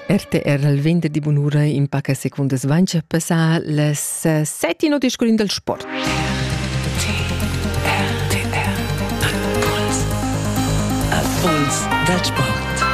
RTR al venderdi bunura in paca secundas vancia passà las eh, sette note scorin dal sport. Impuls da sport.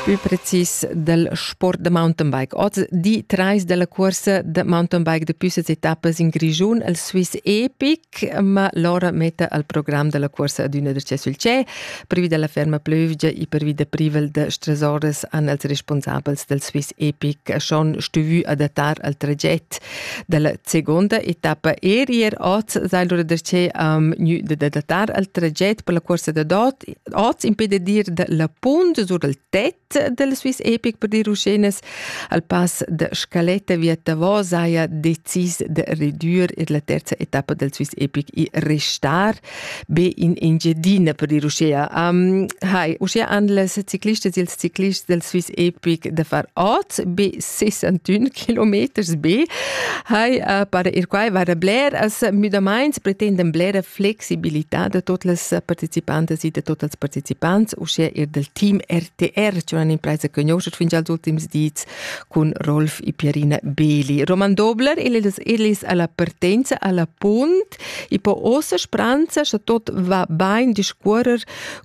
Più precis dal sport da mountainbike. Oz di trais dalla corsa da mountainbike da püssas etappas in Grigiun al Swiss Epic ma Lora metta al program della cuorsa adüna da che sul che privi della ferma plövgia e privi da privel da stresores an els responsabels del Swiss Epic schon stuvü adattar al traget della seconda etappa er ier oz sai lura da che am gnü da adattar al traget per la cuorsa da dot oz impede dir da la punt sur al tet del Swiss Epic per dir uschenes al pass de scaletta via Davos saja decis de redür ir la terza etappa del Swiss Epic e restar be in Engiadina per dir uschea. Um, hai, uschea han les ciclistes e ils ciclists del Swiss Epic de far oz be 61 kilometers be hai uh, para ir quai vara bler as müdamaints pretendem blera flexibilità da tot las participantas e da tot els participants uschè er del team RTR cioè un'impresa che conosce fin als ultims dits con Rolf e Pierina Beli Roman Dobler elis elis alla partenza alla punt e po ossa spranza scha tot va bain discuorer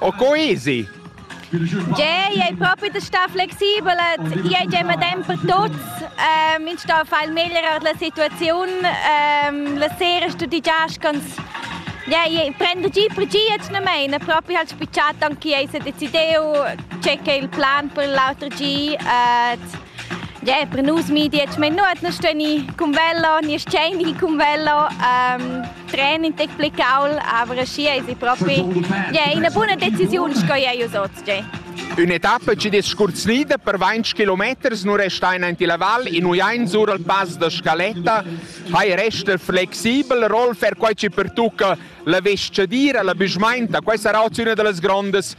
O co easy? Tgei ei propi da star flexibel, tgei ei medem per tuts. Ähm, ins sta feil meglier ord la situaziun. Ähm, la sera studigias ganz Ja, ich prende giù per giù jetzt nicht mehr. Proprio halt spicciato anche io se decidiu c'è che il plan per l'altro giù äh, ja, per nus media, ich meine, nur nicht, wenn ich con velo, nicht scende con velo. Ähm, Training tec pli caul, aber schi es propi yeah, ina buna decisiun sco ei us oz. Yeah. Ün'etappa ci des scurzlida per 20 kilometers nu resta in anti la val in uiain sur al pass da Scaletta hai resta flexibel Rolf er quai ci pertucca la vescadira la büschmainta quai sarà una da las grandes